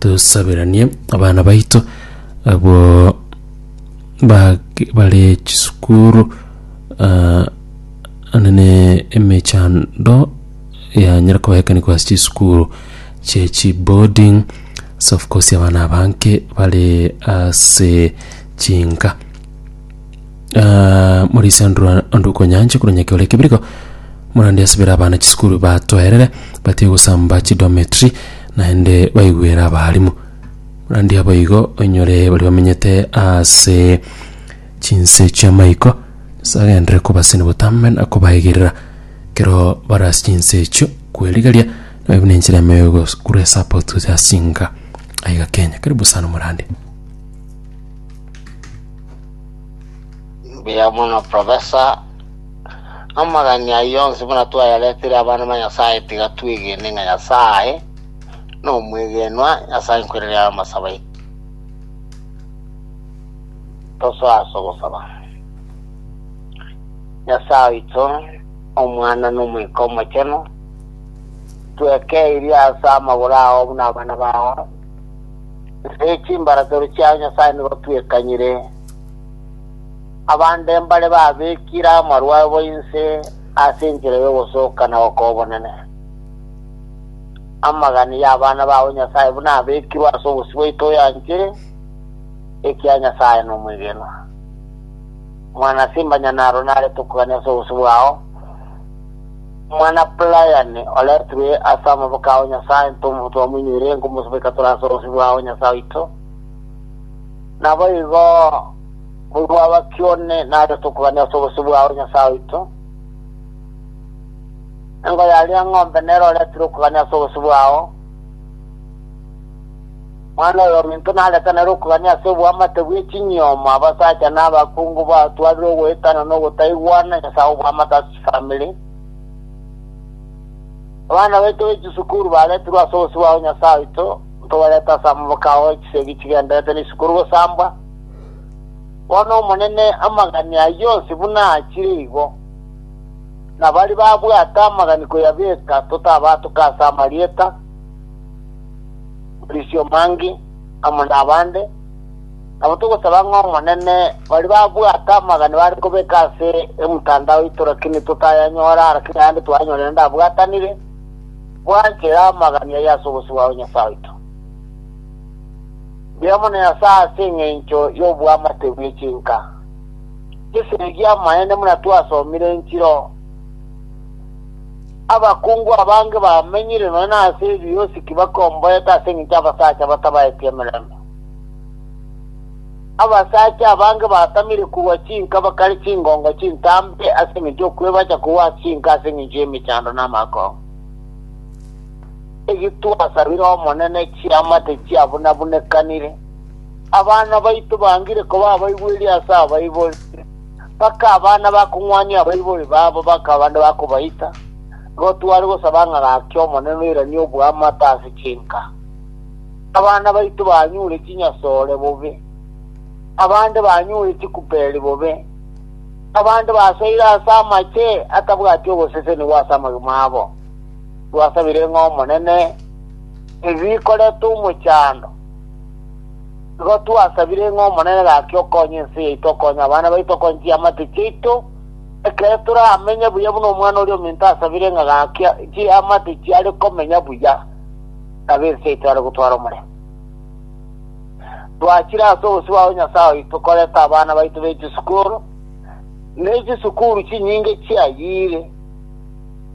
tosaberanie abana baito abwo bak- bare chisukuru ah, anene emechando yanyara kobaekani kwase chisukuru chie chiboarding so of course abana abanke bare ase chinka Ah, murisa ndura ndukonyanche kura nyake ore kibiriko murandi asibira abana chisukuru batoerere batige gosamba chidometri naende baigwere abarimu murandi abo igo oinyore bari bamenyete ase chinse chiamaiko nyasae agenderere kobaseni botambe na kobaegerera kero bara ase chinse echio kwerigeria naye buna enchera ime ya ogos- kura esapoti gocha ase chinka aiga kenya karibu sana murandi Mbuya mono professor, amang'ana ayio onsi buna twayaretire abana ba Nyasaye tiga twegene ng'a Nyasaye nomwegenwa ase enkorera y'amasabo aito. Tosoe ase ogosaba. Nyasaye oito, Omwana na Omoika Omochenu, twekeirie ase amagoro ao buna abana bao, Ase chimbaratero chiao Nyasae nigo twekanyire, abande mbare babekire amarwa abo inse ase enchera y'ogosoka na gokoa obonene. Amagani y'abana bao Nyasae buna abekirwe ase obosio bwaito oyanchire, ekiagera Nyasae nomwegenwa. Mwanase Imanyanaaro narete okogania ase obosio bwao, Omwana Brian oretwe ase amaboko ao Nyasae ntomo twamoinyoire nkomosobeka tore ase obosio bwao Nyasae oito. Naboigo boigo abaki one nare tokogania ase obosio bwao Nyasae oito. Engo yaria eng'ombe nere oretire okogania ase obosio bwao. Mwana oyo ominto nareta nere okogania ase oboamate bwe chinyiomo abasacha na abakungu batwarire ogoetana na ogotaigwana Nyasae oboamate ase Family. Abana baito be chisukuru baretirwe ase obosibwa o Nyasae oito, ntobarete ase amaboke ao e chisegi chigenderete n'isukuru gosambwa. Bono Omonene amagani ayio onsi buna aachire igo, na baria babwate amagani koyabeka totabatuke ase amarieta, Maurizio Mangi, amo nabande. Nabo togosaba ng'a Omonene, baria babwate amagani bare kobeka ase emtandao yaito lakini totayanyora, lakini ayande twayanyorire naende abwatanire, bwanchera amagani ayio ase obosio bwao Nyasae oito. Mbia mono Nyasae ase engencho y'oboamate bwe chinka. Gese erio amaene buna twasomire enchiro, abakungu abange bamenyire nonya nase ebiosiki bakomboete ase engencho y'abasacha batabaeti emeremo. Abasacha abange batamire kogwa chinka bakare chingongo chintambe ase engencho y'okwebacha kogwa ase chinka ase engencho y'emechando na amakongo. Egitwasabire Omonene chiama tichiabunabunekanire. Abana baito bangire koba abaigweri ase abaibori, mpaka abana bakong'wania abaibori babo bakaba bande bakobaita. Igo tware gosaba ng'a gaki Omonene oiranie oboamate ase chinka. Abana baito banyure chinyasore bobe, abande banyure chikuperi bobe, abande basoire ase amache atabwati ogosesenigwa ase amagima abo. Twasabire ng'a Omonene ebi bikorete omochando. Igo twasabire ng'a Omonene gaki okonye ense yaito, okonye abana baito, okonye chiamate chiaito, ekere toramenye buya buna omwana oria ominto asabire ng'a gaki chiamate chiare komenya buya. Nabo ense etware gotwara omorembe. Twachire ase obosio bwao Nyasae oito koreta abana baito be chisukuru, ne chisukuru chinyinge chiayire,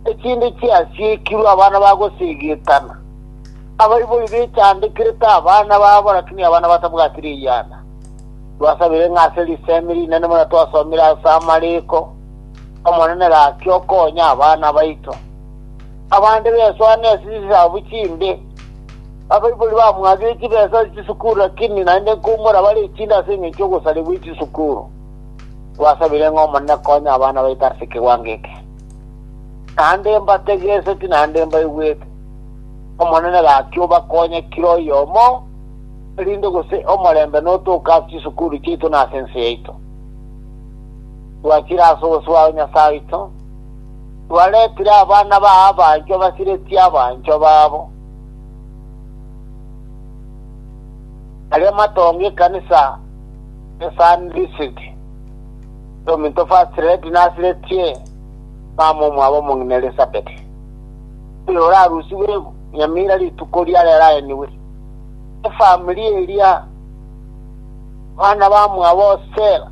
echinde chiasiekirwe abana ba gosegetana. Abaibori bechandekirete abana babo, lakini abana batabwati riyana. Twasabire ng'a ase risemi rinene buna twasomire ase amariko, Omonene gaki okonye abana baito. Abande besoa ne chisabu chinde, abaibori bamwatire chibesa ase chisukuru, lakini naende nkoumora bare echinde ase engencho y'ogosarigwa echisukuru. Twasabire ng'a Omonene akonye abana baito ase ekewango eke. Naende mbategeseti naende mbaigwete. Omonene gaki obakonye kera oyomo, erinde gose omorembe notoke ase chisukuru chiaito na ase ense yaito. Twachire ase obosio bwa Nyasae oito. Baretire abana ba abanchwa basiretie abanchwa babo, baria matonge ekanisa ya Sanhedrisiti. Ominto First Lady nasiretie mama omwabo omong'ina Elisabeti, oyo orarusigwe nyamira rituko ria rero aenigwe. Efamiri eria abana bamwabo Stella,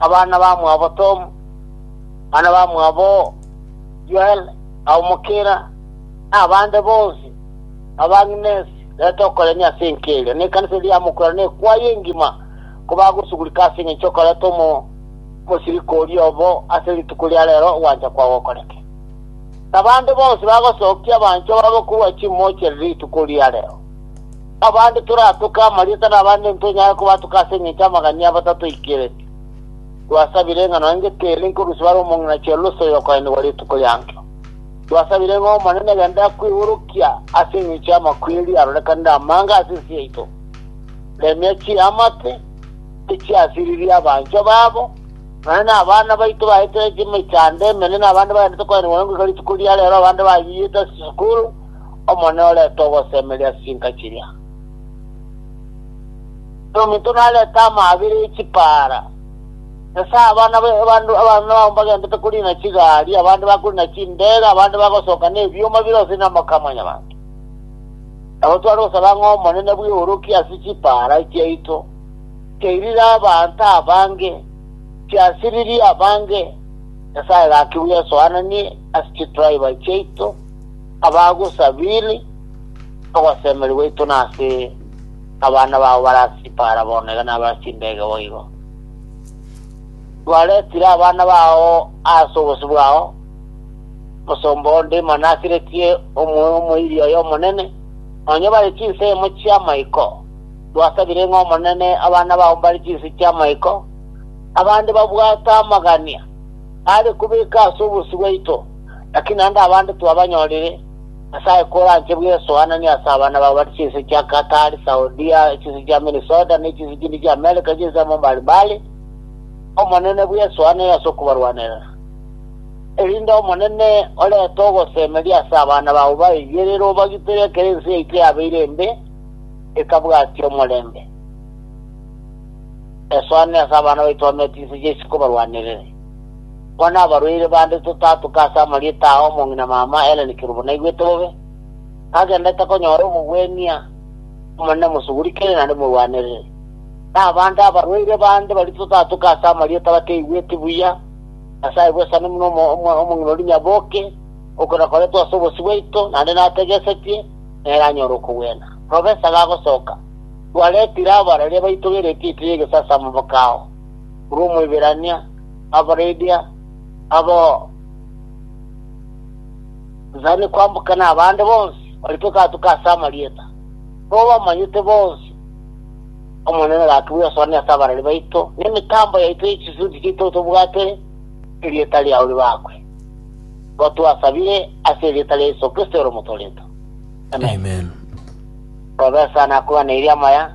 Abana bamwabo Tomu, bana bamwabo Yoel, na omokina, na abande bonsi b'abang'inesi, reta okorenia ase enka eria, na ekanisa eria ya mokwero na ekwaya engima, kobagosugurika ase engencho y'okoreta omo- omosiriko oria obo ase rituko ria reero ogwancha kwao gokoreke. Nabande bonsi bagosokia abanchwa babo korwa chimoocha rituko ria reero. Abande toratoke amarieta na abande ntonyare kobatoka ase engencho y'amagania abo tatoikeretie. Twasabire ng'a nonya ngetere nkorusia bare omong'ina Chelosi oyokoenigwa rituko ri'anchio. Twasabire ng'a Omonene agende akwegorokia ase engencho y'amakweri arorekanire amange ase ense yaito. Remia chiamate echiasiririe abanchwa babo, nonya nabana baito baetera chimechando emenene, abande baendete koenigwa nengoika rituko ria reero, abande bayiiyete ase chisukuru, Omonene orente ogosemeria ase chinka chiria, na ominto narente amaabera e chipaara. Nyasae abana b'abanto, abameme babo mbagenderete koriina chigari, abande bakoriina chindeege, abande bagosoka nebioma bire gose namaka a mwanyabanto. Nabo tware gosaba ng'a Omonene bw'eorokie ase chipaara chiaito, chiairire abanto abange, chiasiririe abange. Nyasae gaki bw'Yeso aananie ase chitraiba chiaito. Abagosabire, ogosemeria gwaito nase abana bao barasibare bono, iga nabarasinde ege boigo. Twaretire abana bao ase obosio bwao, omosomba onde imana asiretie omoyo omoiri oye omonene, nonya bare chinse imo chi'amaiko. Twasabire ng'a Omonene abana bao mbare chinse chi'amaiko, abande babwate amagania are kobeka ase obosio bwaito. Naki naende abande twabanyorire, Nyasae koranche buya esoanani ase abana bao bare chinse chia Qatar, Saudia, chinse chia Minnesota, ne chinse chinde chia America chinse amo mbare mbare, Omonene buya esoanani ase okobarwanerera, erinde Omonene orente ogosemeria ase abana bao baigerere obagitere ekero ense yaito yabeire embe, etabwatia omorembe. Esoanani ase abana baito bamenya chinse chiaito chikobarwanerere. Konya abarwaire bande totatuke ase amarieta ao omong'ina mama Hellen Kirubo naigwete bobe, tagendete konyora obogwenia Omonene mosuguri kere naende morwanerere. Na abande abarwaire bande baria totatuke ase amarieta bateigweti buya, Nyasae bwesani buna omong'ina oria nyaboke, okwe nakoretwe ase obosio bwaito naende nategesetie, nere anyore okogwena. Professor gagosoka, twaretire abararia baito b'eretiti ri'egesaasi amaboko ao. korwa Omoiberania, Abarabia, abo nsani kwamboka nabande bonsi barikwe gatuko ase amarieta, nigo bamanyete bonsi Omonene gaki bwesoania ase abarari baito, na emitambo yaito ye chisuti chiaito otobwate erieta riao ribakwe. Nigo twasabire ase erieta ria Yeso Kristo ere Omotoorento. Amen. Amen. Robe sana akogana eria amaya.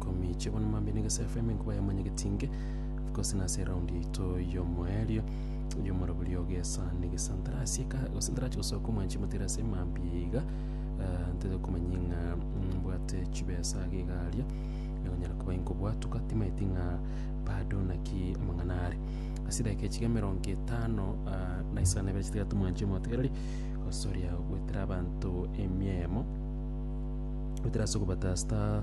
Komiche bono mambia na Egesae FM nkoba ya Mwanyagetinge of course na ase eround yaito y'omoerio y'omoraburi o Gesa na Egesantara ase eka gose ntarachi gosoka omwanchi motere ase mambia iga eh, ntete komanya ng'a mbwate chibesa age iga aria ekonyara koba inkobwatuka timaeti ng'a bado naki amang'ana are ase edagika echiga emerongo etano ah, na isano na ibere chitigate omwanchi omotegereri gosoria gwetera abanto emiemo gotera ase ogobatasta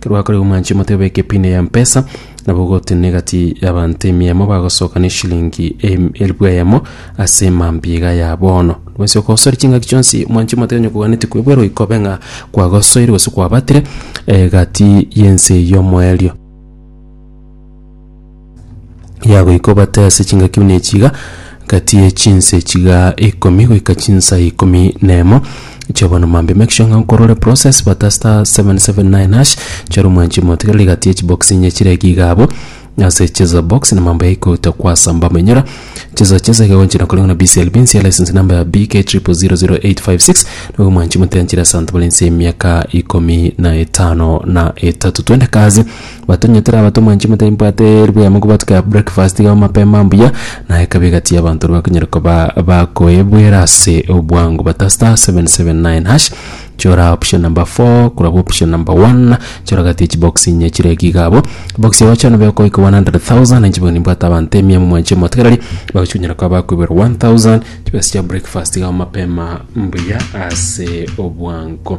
Kerwakorire omwanche omote obe ekepinde ya mpesa, nabo ogotenena egati y'abanto emiemo bagosoka neshilingi elifu eyemo ase mambiga ya bono. Nobwensi okosoria chingaki chionsi omwanchi omote onye koganeti kwebwera oiko obe ng'a kwagosoire gose kwabatire egati y'ense y'omoerio. ya goika obate ase chingaki buna echi iga, gati ye chinse chiga ikomi goika chinsa ikomi na emo chia bono mambia make sure ng'a nkorwa ore process bata star 779# chora omwanchi omotigereri gati ye chibox inye chire iga iga abwo ase cheza box na mambia yaikogotwa kwasamba amanyora cheza cheza iga gochira kore ng'a na BCLB nsiya license number ya BK 000856 nigo omwanchi omotiga nchire ase abanto bare nse y'emiaka ikomi na etano na etato twende kazi. Batonyetera abatomwa inche motari mbwate ribuya mokobwata ka breakfast iga mapema mbuya, na ekabe egati y'abanto ore bakonyare koba bakoebwera ase obwango bata star seven seven nine hash chora option number four korwa option number one chora gati ya chibox inye chire eki iga abwo box eye gocha nobe okoika one hundred thousand inche bono nimbwate abanto emia momwanche omotegereri bagochi konyara koba bakoeberwa one thousand chibesa chia breakfast iga mapema mbuya ase obwango.